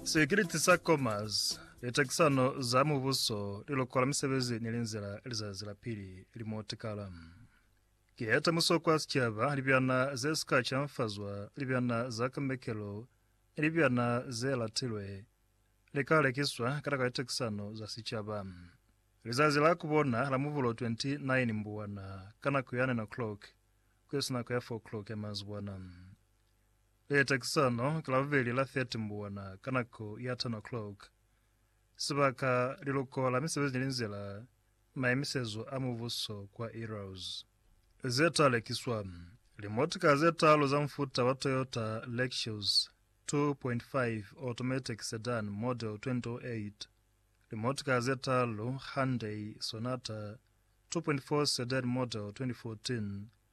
Sekiriti sa Commerce, litakisano za mubuso, lilokola misebezi ni linzila lizazi la pili limotikala. Kiya temuso kwa sicaba, libyana ze sika canfazwa, libyana za kamekelo, ni libyana ze latilwe, li ka lekiswa ka taka litakisano za sicaba. Lizazi la kubona la Mubulo 29 Mbuwana ka nako ya 9 o'clock kuyasina nako ya 4 o'clock ya manzibwana. Leta ki sano ki la bubeli la 30 mbuwana ka nako ya 10 o'clock. Sibaka, Liluko la Misebezi ni Linzila, Maimisezo a Mubuso kwa Eros. Ze ta lekiswa, Limotika ze talu za mufuta wa Toyota Lexus 2.5 Automatic Sedan Model 2008, limotika ze talu Hyundai Sonata 2.4 Sedan Model 2014,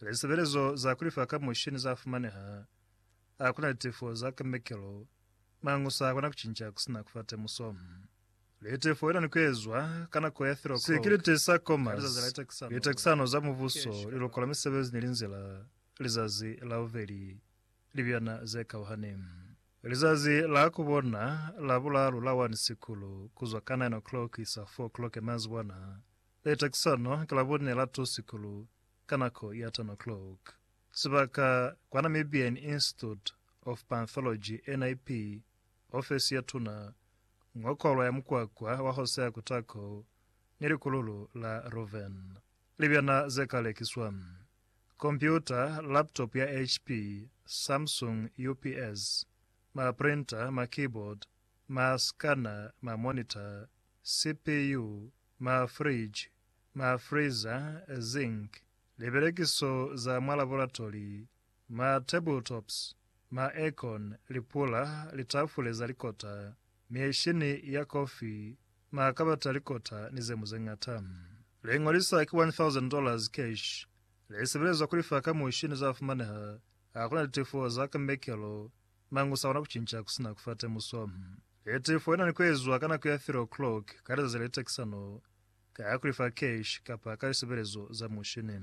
Lisebelezo za kulifa ka mushini za fumaneha. A kuna litefo za kemikelo, mañu sa kona kucinca kusina kufa temuso. Litefo ina ni kuezwa ka nako ya thirok'o. Sikiliti sa Commerce, litekisano za mubuso, lilukola misebezi ni linzila, lizazi la bubeli, libyana ze kauhani. Lizazi la kubona, la bulaalu, la 1 sikulu, kuzwa ka 9 o'clock kuisa 4 o'clock manzibwana, Leta ki sona ka Labone la two sikulu ka nako ya ten o'clock. Sibaka, kwa Namibian Institute of Panthology, NIP, ofesi ya tuna, ngo kolwa ya mukwakwa wa Hosea Kutako ni likululu la Reuven. Libyana ze ka lekiswa, kompyuta, laptop ya HP, Samsung, UPS, ma printer, ma keyboard, ma scanner, ma monitor, CPU, ma fridge, ma freezer, zinc, libelekiso za mwa laboratori, ma table tops, ma aircon, lipula, litafule za likota, mieshini ya kofi, ma kabati a likota ni zeñwi zeñata. Liño li sa ki $1,000 cash li sebelezwa ku lifa ka mushini za fumaneha ha ku na litefo za ka mekelo Nanga u sa kona ku cinca ku si na ku fa temuso? E tee foo i na ni ku ezwa ka nako ya three o'clock ka lizazi le tekisano, ka ya ku li fa cash kapa ka lisebelezo za mushini.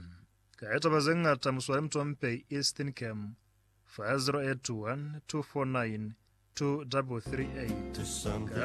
Ka ya taba ze ñata Musuali Mutompei East Steincam fa 0812492338.